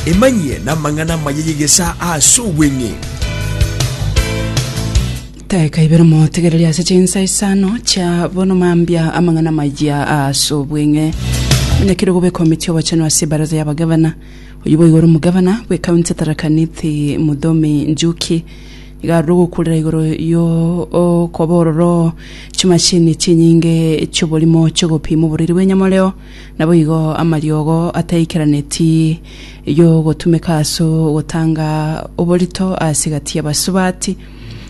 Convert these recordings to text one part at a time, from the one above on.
Emanyie namang'ana amaya y'egesaa ase obweng'e. Teka ibere motegereri ase chinsa isano chia bono mambia amang'ana amaya ase obweng'e. Muna kere gobe ekomiti y'obochenu ase ebaraza y'abagavana. Oyio boigo ore omogavana bwe county ya Tharaka Nithi Mudhomi Njuki. Iga arure ogokurera igoro yo okoba ororo chimashini chinyinge chi'oborimo chi'ogopima oboriri bw'enyamoreo. Naboigo amariogo ataikeraneti y'ogotumeka ase ogotanga oborito ase egati y'abasubati,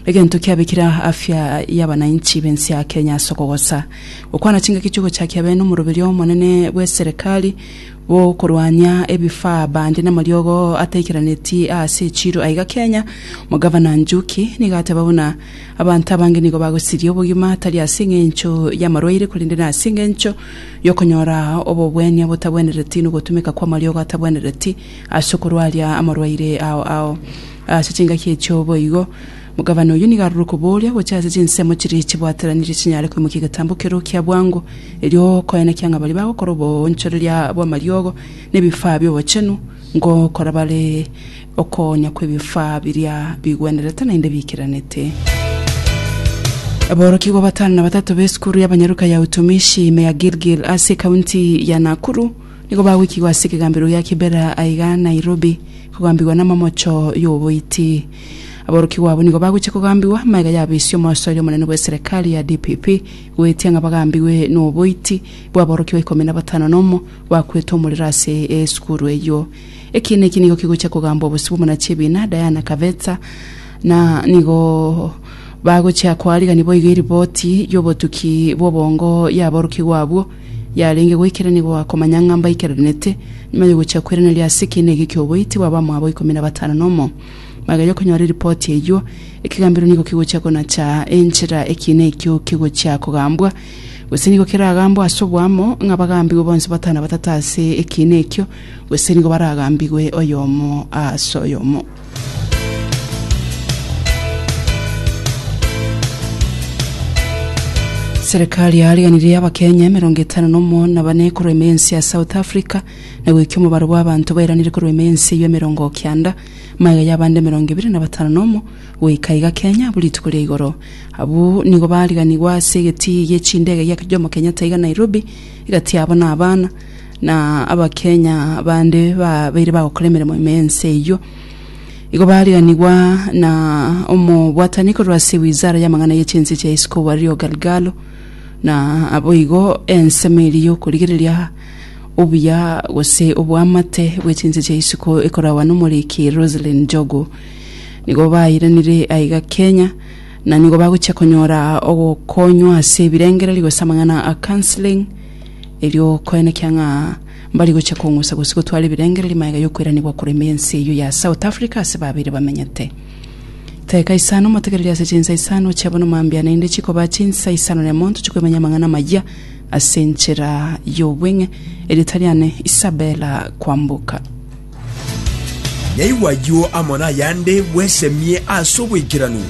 egento kiabekire afya y'abanainchi b'ense ya Kenya ase okogosa. Gokwana chingaki chi'ogochakia bene omoroberi omonene bw'eserekari bw'okorwania ebifaa bande namariogo ataikeraneti aase echiiro aiga Kenya, Omogavana Njuki nigo ateba buna abanto abange nigo bagosiria obogima tari ase engencho y'amarwaire korende nase engencho y'okonyora obobwania botabwenereti nogotumeka kw'amariogo atabwenereti ase okorwaria amorwaire ao ao. Ase chingaki echio boigo, Gavana oyio nigo aroro kobooria gocha ase chinsemo chiria chibwateranirie chinyare koimokia egetambo ekeroo kia bwango, erio koenekia ng'a baria bagokora oboonchoreria bw'amariogo na ebifaa bi'obochenu, ngokora bare Okoonya kw'ebifaa biria bigwenerete naende biikeranete. Aborokigwa batano na batato b'esukuru y'abanyaruka ya Utumishi ime ya Gilgil ase ekaunti ya Nakuru nigo bagoikigwa ase ekegambero gia Kibera aiga Nairobi kogambigwa n'amamocho y'oboiti. Aborokigwa abo nigo bagochia kogambigwa amaiga yabesie omosoeri omonene bw'eserekari ya DPP goetia ng'a bagambigwe n'oboiti bw'aborokigwa ikomi na batano nomo bakwete omorero ase esukuru eyio. Ekiina eki nigo kigochia kogambwa obosio bw'omona chi'ebiina, Diana Kavetsa, na nigo bagochia koariganio boigo eriboti y'obotuki bw'obongo y'aborokigwa abwo yarenge goikerania goakomanya ng'a mbaikeranete nyuma y'ogochia kweraneria ase ekiina eke ki'oboiti bw'abamwabo ikomi na batano nomo. Bageria konyora eriboti eyio, ekegambero nigo kigochia konacha enchera ekiina ekio kigochia kogambwa, gose nigo keragambwe ase oboamo ng'a bagambigwe bonsi batano batata ase ekiina ekio, Gose nigo baragambigwe oyomo ase oyomo. Serikali yaariganirie Abakenya emerongo etano na omo na bane korwa ime ense ya South Africa na goikia omobaro bw'abanto bairanire korwa ime ense eyio emerongo kianda magega y'abande emerongo ebere na batano na omo goika iga Kenya abwo rituko ria igoro. Abwo nigo baariganigwe ase egetii gie chindege gia Jomo Kenyatta iga Nairobi, egati yabo na abana. na Abakenya bande babeire bagokora emeremo ime ense eyio. Igo bariganigwa na omobwatani korwa ase wizara y'amang'ana ye chinse chia isiko Wario Galgalo, na naboigo ensemo eria y'okorigereria obuya gose oboamate bwe chinse chia isiko ekoragwa n'omoriki Roselyn Njogu. Nigo bairanire aiga Kenya, na nigo bagochia konyora ogokonywa ase ebirengererio gose amang'ana a counselling, erio koenekia ng'a mbari gochia kong'usa gose gotwara ebirengererio magega y'okoiranigwa korema ense eyio ya South Africa ase babeire bamenyete. Teka isano motegereri ase chinsa isano chia bono mambia naende chikoba chinsa isano na emonto chikwemanya amang'ana amayia ase enchera y'obweng'e. Erieta riane Isabella Kwamboka. Naigwa ayio amo nayande bwesemie ase oboikeranu.